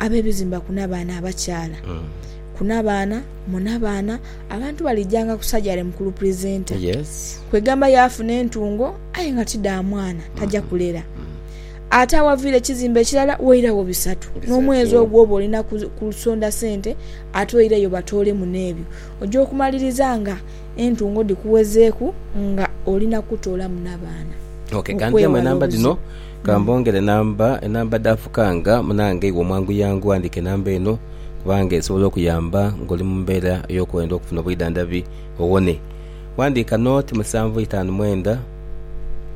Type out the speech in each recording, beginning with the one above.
Ab'ebizimba ku n'abaana abakyaala ku n'abaana mu n'abaana abantu balijaanga ku sajale mu kulupulizenta. Kwegamba yaafuna entungo aye nga ti dha mwana, taja kulera. Ate awaviira ekizimba ekirala wairawo bisatu. N'omwezi ogwo oba oli na kusonda sente ate oireyo batoolemu n'ebyo. Oja okumaliriza nga entungo dhikuwezeeku nga oli na kutoolamu n'abaana. Okwewala obuzibu. Ka mbongere namba, enamba dhaafukanga munange iwe omwanguyangu ghandiika enamba eno kubanga esobola okuyamba ng'oli mu mbeera ey'okwenda okufuna obwidhandhabi owone. Ghandiika 0 musanvu itaanu mwenda,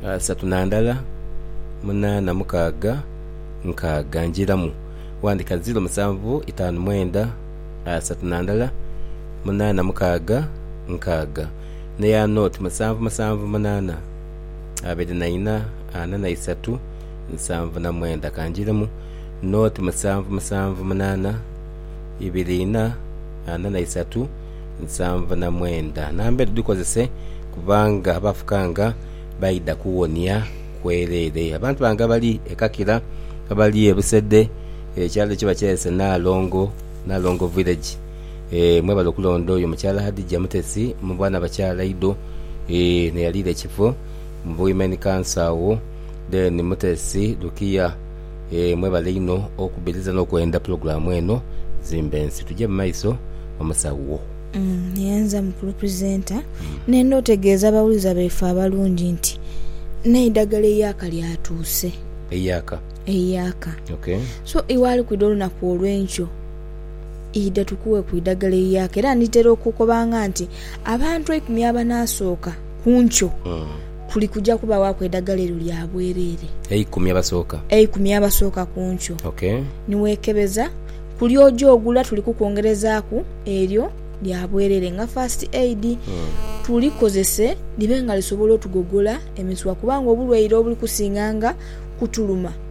asatu na ndala, munaana mukaaga, nkaaga. Njiiramu, ghandiika 0 musanvu itaanu mwenda, asatu na ndala, munaana mukaaga, nkaaga, n'eya 0 musanvu musanvu munaana. abiri na ina, ana na isatu, nsanvu na mwenda. Ka njiremu. Noti musanvu musanvu munaana, ibiri ina, ana na isatu, nsanvu na mwenda. Namba edho dhikozese kubanga abafukanga baidha kuwonia kwereere. Abantu bange abali e Kakira, abali e Busedhe, ekyalo kye bakyayese Naalongo, Naalongo Village. Eeh mwebale okulonda oyo mukyala Hadijah Mutesi muba nabakyala ido eeh neyaliira ekifo mu Women Council agho then Mutesi Lukia eeh mwebale inho okubiriza nokwenda program eno zimbe nsi tuje mumaiso omusawo. Yenze mukulu presenter nenda otegeeza abawuliza baife abalungi nti neidagala eiyaka lyatuuse. Eiyaka? Eiyaka. Okay. So iwe alikwidha olunaku olwenkyo. Idha tukuweku eidagala eiyaaka. Era nditera okukobanga nti abantu eikumi abanaasooka ku nkyo kuli kuja kubawaku eidagala eryo lya bwereere. Eikumi abasooka? Eikumi abasooka ku nkyo. Ok. Ni weekebeza, kuli oja ogula tuli kukwongerezaaku eryo lya bwereere nga First Aid. Tulikozese libe nga lisobola otugogola emisuwa kubanga obulwaire obuli kusinganga kutuluma.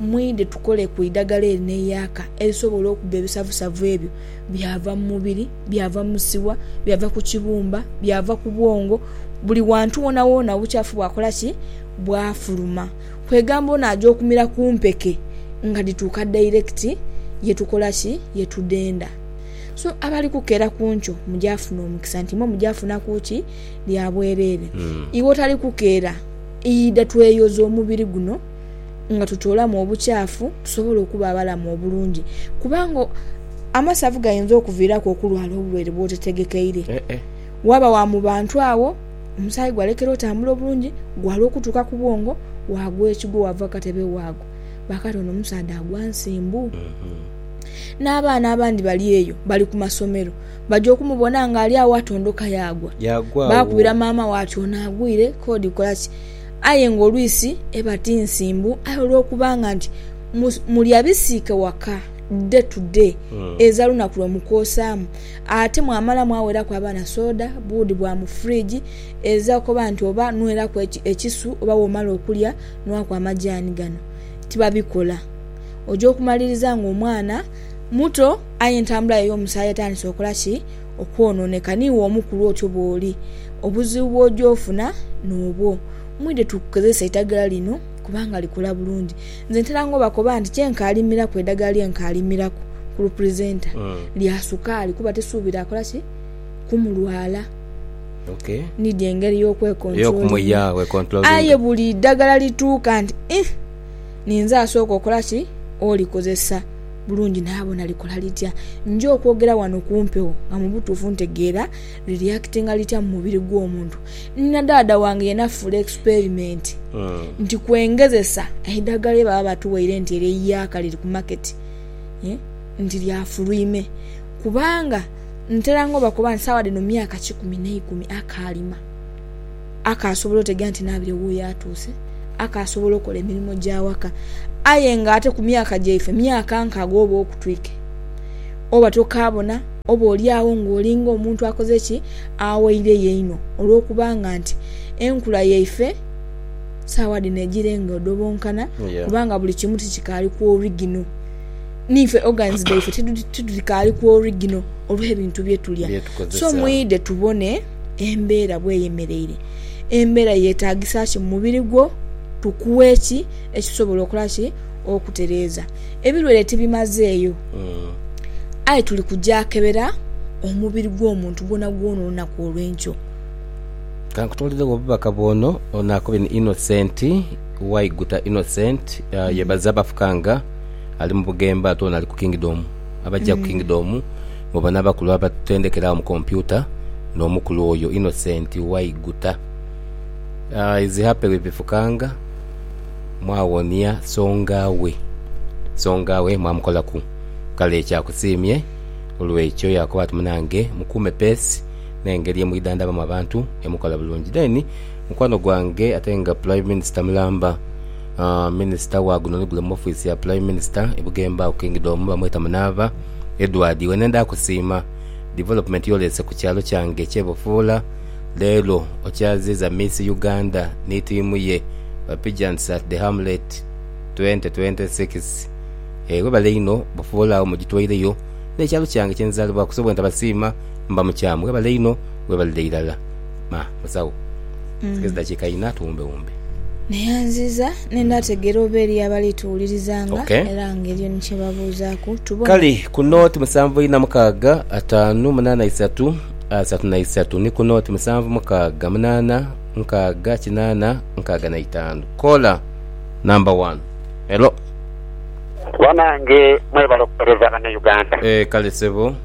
Mwidhe tukole ku idagala erina eyaaka erisobola okuba ebisavusavu ebyo byava mu mubiri, byava mu siwa, byava ku kibumba, byava ku bwongo, buli wantu woonawoona obukyafu bwakola ki? Bwafuluma. Kwegamba ono aja okumira ku mpeke nga dhituuka direct ye tukola ki? Ye tudhenda. So abali kukeera ku nkyo mujaafuna omukisa nti imwe mujaafunaku ki? Lya bwereere. Iwe otali kukeera, idha tweyoze omubiri guno. nga tutoolamu obukyafu tusobole okuba abalamu obulungi. Kubanga amasavu gainza okuviiraku okulwala obulwaire bwotetegekeire. Waaba wa mu bantu agho, omusaayi gwalekera otambula obulungi, gwala okutuuka ku bwongo, waagwa ekigwo waava ku katebe waagwa. Baakati ono omusaadha agwa nsimbu. N'abaana abandi bali eyo, bali ku masomero, baja okumubona ng'ali agho atondoka yaagwa. Baakubira maama we ati ono agwire, k'odi kola ki? aye nga olwisi eba ti nsimbu aye olwokubanga nti mulya bisiike waka day to day eza lunaku lwe mukoosaamu ate mwamala mwaweraku abaana soda, buudi bwa mu fridge eza okoba nti oba nweraku ekisu oba womala okulya nwaku amajaani gano tibabikola oja okumaliriza nga omwana muto aye entambula ye ey'omusaayi etandise okola ki? Okwonooneka niiwe omukulu otyo bw'oli, obuzibu bw'oja ofuna n'obwo. Mwidhe tukukozese eidhagala lino kubanga likola bulungi. Nze ntera nga obakoba nti kye nkaalimiraku eidhagala lye nkaalimiraku ku lupulizeenta lya sukaali kuba tisuubira akola ki? Kumulwala. Niidhi engeri y'okwekontulolinga. Aye buli idhagala lituuka nti, ih, ninze asooka okola ki? Olikozesa. bulungi naabona likola litya. Nja okwogera ghano ku mpewo nga mu butuufu ntegeera liriyakitinga litya mu mubiri gw'omuntu. Ni na dhaadha wange yena afuula experimenti nti kwengezesa eidhagala lye baba batuwaire nti eryo eiyaaka liri ku maketi nti lya fulwime kubanga nteranga obakoba nti sawa dhino myaka kikumi n'eikumi akaalima. akaasobola otegera nti naabire wuuyo atuuse, akaasobola okola emirimo gy'awaka. Aye nga ate ku myaka gyaife, myaka nkaaga oba okutwika, oba tokaabona, oboolyawo ng'oli ng'omuntu akoze ki? Awaireyo einho. Olwokubanga nti enkula yaife saagha dhino egira engodobonkana kubanga buli kimu tikikaali ku origino. N'ife organs dhaife tidhikaali ku origino olw'ebintu bye tulya. So mwidhe tubone. embeera bw'eyemeleire, embeera yeetaagisa ki mu mubiri gwo, tukuwe ki ekisobola okola ki okutereeza. Ebilwaire tibimazeeyo hmm. aye tuli kujakebera omubiri gw'omuntu gwonagwona olunaku olw'enkyo. Kankutooleregho obubaka bw'ono, ono akobye ni Innocent Waiguta. Innocent uh, hmm. yebaza bafukanga ali mu Bugembe ate ono ali ku Kingdom. Abaja ku Kingdom mwe banabakulu abatutendekera agho mu kompyuta n'omukulu oyo Innocent Waiguta. Is happy with Bifukanga mwawonia songa we songa we mwamukolaku kale ekya kusiimye olwekyo yakoba ati munange mukuume peesi n'engeri emwidhandhabamu abantu emukola bulungi. Then mukwano gwange ate nga Prime Minister mulamba. Minisita wa guno ni gule mu ofiisi ya Pulaime Minisita e Bugemba ku Kingidomu bamweta Munaava Edward. Wene nda kusiima divolopumenti y'oleese ku kyalo kyange eky'e Bufuula. Leero okyaziiza Miss Uganda ni tiimu ye ba Pigeants at the Hamlet twenty twenty six. Webale inho Bufuula agho mugitwaireyo n'ekyalo kyange kye nzaalibwaku so bwentabasiima mba mukyamu. Webale inho, webalire irala. Ma, musawo. Nsige zidakiika inha tuwumbewumbe. Neyanziza ni ndategeera oba eriyo abali tuwulirizanga Ok. era nga eriyo ni kye babuuzaaku. Tubone. Kale ku nooti musanvu inha mukaaga, ataanu, munaana isatu, asatu na isatu ni ku nooti musanvu mukaaga, munaana, nkaaga, kinaana, nkaaga na itaanu. Koola namba wanu. Hello. Banange mwebale okuwereza bana Uganda. Eeh kale sebo.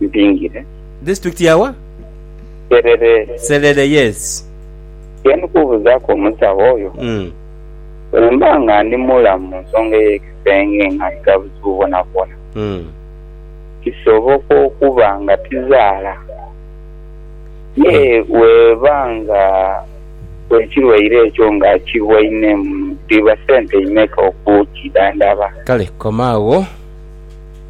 Mpingire. District ya wa? Serere. Serere yes. Kyendi kubuzaku omusawo oyo mm. Bwemba nga ndi mulamu munsonga eyekisenge nga ndina obuzibu bwonabwona mm. Kisoboka okuba nga tizaala ye mm. Weba nga ekirwaire ekyo nga kiwainemu dhiba sente imeka okukidhandhaba? Kale koma agho.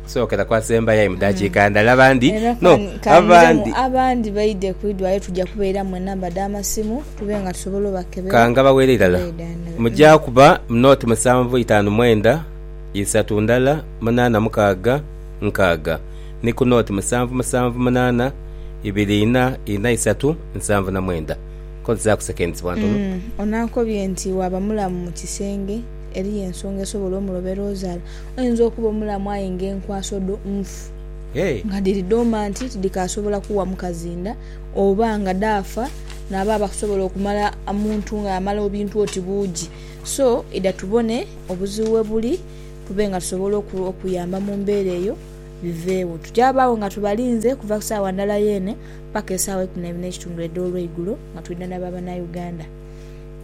Sookera ku asembayo aye mu daakiika ndala. Abandi no, abandi. Abandi baidhe ku idwaliro tuja kubairamu enamba dha masimu tube nga tusobola obakebera. Ka ngabaweere irala. Muja kuba mu nooti musanvu itaanu mwenda isatu ndala munaana mukaaga nkaaga, ni ku nooti musanvu musanvu munaana ibiri ina ina isatu nsanvu na mwenda. Kozesaaku seconds bwa ntono. Ono ankobye nti waaba mulamu mu kisenge, eriyo ensonga esobola omulobe lw'ozaala. Oyinza okuba omulamu aye nga enkwaso dho nfu nga dhiri domanti tidhikaasobola kuwa mukazi nda oba nga dhaafa naabo abakusobola okumala omuntu nga yamala obintu oti buugi. So idha tubone obuzibu webuli tube nga tusobola okuyamba mu mbeera eyo biveegho. Tujabaagho nga tubalinze kuva ku saawa ndala yeene paka esaawa eikuminaibiri n'ekitundu edh'olweigulo nga twidha na ba Banauganda.